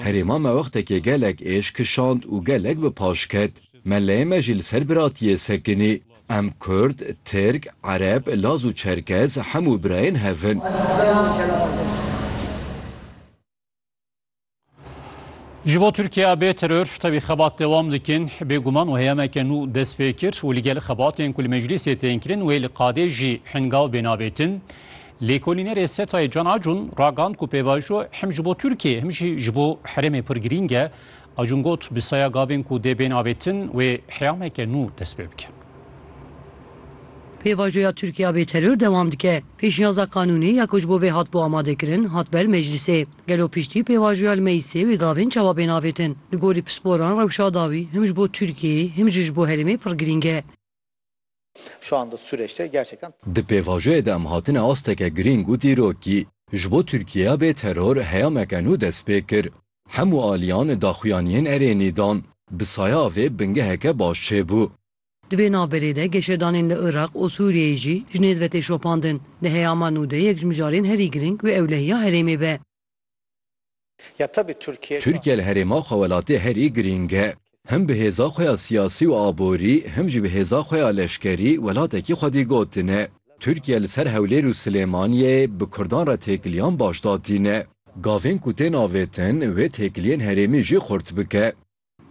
Herê ma me wextekê gelek êş kişand û gelek bi paş ket. Melleyê me jî li ser biratiyê sekinî. Em Kurd, Tirk, Ereb, Laz û Çerkez hemû birayên hev in. Ji bo Tirkiya bê teror tevî xebat dewam dikin bêguman û heyemeke nû dest pê kir û li gel xebatên ku li meclîsê tên kirin wê li qadê jî hingav bê nabêtin. Lêkolînerê SETAyê Can Acun ragand ku pêvajo hem ji bo Tirkiye hem jî ji bo herêmê pir girîng e. Acun got bi saya gavên ku dê bên avêtin wê heyameke nû dest pê bike. Pêvajoya Tirkiya bê teror dewam dike. Pêşniyaza qanûnê ya ku ji bo vê hatibû amadekirin, hat ber meclîsê. Gelo piştî pêvajoya li meclîsê wê gavên çawa bên avêtin? Li gorî pisporan rewşa dawî him ji bo Tirkiyeyê him jî ji bo herêmê pir girîng e. Di pêvajoyê de em hatine asteke girîng û dîrokî. Ji bo Tirkiyeya bê teror heyameke nû dest pê kir. Hemû aliyan daxuyaniyên erênî dan. Bi saya vê bingeheke baş çêbû. Di vê navberê de geşedanên li Iraq û Sûriyeyê jî ji nêz ve tê şopandin. Di heyama nû de yek ji mijarên herî giring wê ewlehiya herêmê be. Tirkiye li herêma xwe welatê herî giring e. Him bi hêza xwe ya siyasî û aborî, him jî bi hêza xwe ya leşkerî welatekî xwedî gotine. Tirkiye li ser Hewlêr û Silêmaniyê bi kurdan re têkiliyan baş datîne. Gavên ku tên avêtin wê têkiliyên herêmî jî xurt bike.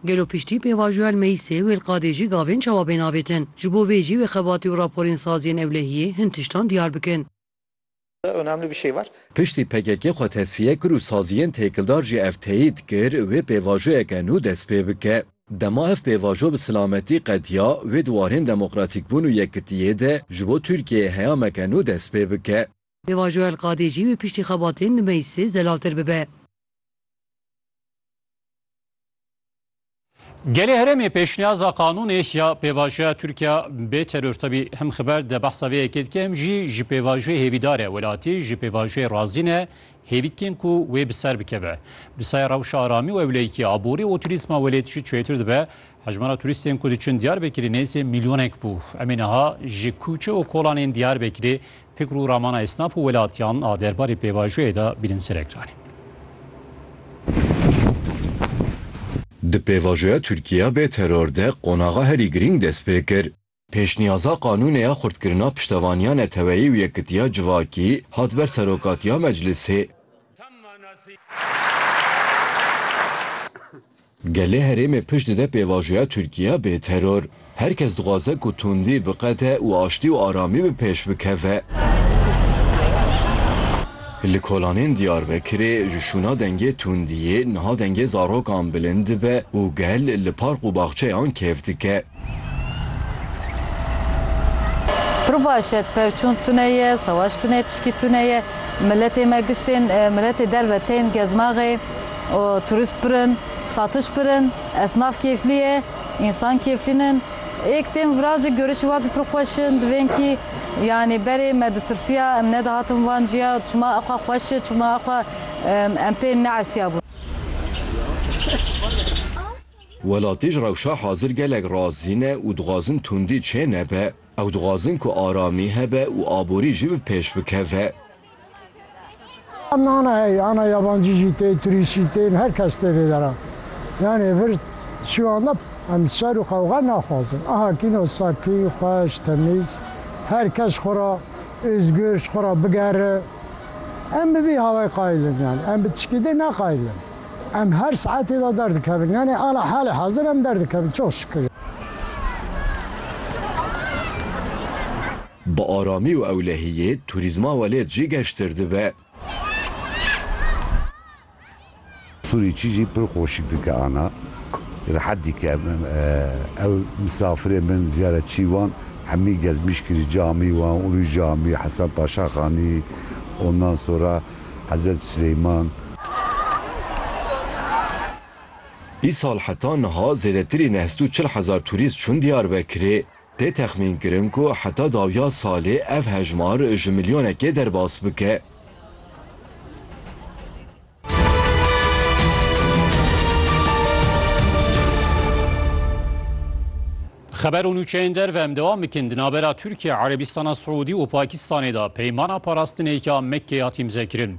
Gelo piştî pêvajoya li meyîsê wê li qadê jî gavên çawa bên avêtin? Ji bo vê jî wê xebatî û raporên saz yên ewlehiyê hin tiştan diyar bikin. Piştî pkk xwe tesfiye kir û saziyên têkildar jî ev teyîd kir wê pêvajoyeke nû dest pê bike. Dema ev pêvajo bi silametî qediya wê di warên demokratîkbûn û yekkitiyê de ji bo Tirkiyeyê heyameke nû dest pê bike. Deva Joel Qadê jî wê piştî xebatên li meclisê zelaltir bibe. Gelê herêmê pêşniyaza qanûnê ya pêvajoya Tirkiya bê teror tevî him xiber de behsa vê yekê dike him jî ji pêvajoyê hêvîdar e. Welatî ji pêvajoyê razî ne hêvî dikin ku wê bi ser bikeve. Bi sayê rewşa aramî û ewleyîkî, aborî û turîzma welêt jî çêtir dibe Hejmara turîstên ku diçûn Diyarbekirê nêzî mîlyonek bû. Em ê niha ji kûçe û kolanên Diyarbekirê fikr û ramana esnaf û welatiyan a derbarê pêvajoyê de bînin ser ekranê. Di pêvajoya Tirkiye bê teror de qonaxa herî girîng dest pê kir. Pêşniyaza qanûnê ya xurtkirina piştevaniya neteweyî û yekitiya civakî hat ber serokatiya meclisê. Gelê herêmê pişt dide pêvajoya Tirkiye bê teror. Her kes dixwaze ku tundî biqete û aştî û aramî bi pêş bikeve. Li kolanên Diyarbekirê ji şûna dengê tundiyê niha dengê zarokan bilind dibe û gel li park û baxçeyan kêf dike. Rubaşet, pevçûn tune ye, sewaş tune ye, tişkî tune ye. Miletê me giş tên, miletê derve tên gezmaxê û turist pir in, satiş pir in, esnaf kêflî ye, însan kêflîn in. Êk tên vira zî görişî wa zî pir xweş in. Di vênkî yanî berê me ditirsiya em nedihatin van ciya çima ew xwe xweş e, çima ew xwe em pê neesiyabûn. Welatî ji rewşa hazir gelek razî ne û dixwazin tundî çê nebe. Ew dixwazin ku aramî hebe û aborî jî bi pêş bikeve. Nana heye, ana yabancî jî tên, turîst jî tên, her kes tê vê deran. Yanê vir çiyan de em şer û qewxe naxwazin. Aha kîno sakî, xweş, temîz, her kes xwe re êzgir ji xwe re bigere. Em bi vî hawayê qayil in yanê. Em bi tişkî dê neqayil in. Em her saetê de derdikevin. Yanê ala halê hezir em derdikevin. Çok şükür. Bi aramî û ewlehiyê turîzma welêt jî geştir dibe. Sûrî çî jî pir xoşik dike ana rehet dike. Ew misafirên bên ziyaretçî wan hemî gezmîş kirî camî wan Ulu Camî, Hesen Paşa Xanî, ondan sora Hezret Sileyman. Îsal heta niha zêdetirî neh sed û çil hezar turîst çûn Diyarbekirê. Tê texmînkirin ku heta dawiya salê ev hejmar ji milyonekê derbas bike. Xeber û nûçeyên derve em dewam bikin. Di navbera Tirkiye, Erebîstana Siûdî û Pakistanê de peymana parastinê ya Mekkeyê hat îmzekirin.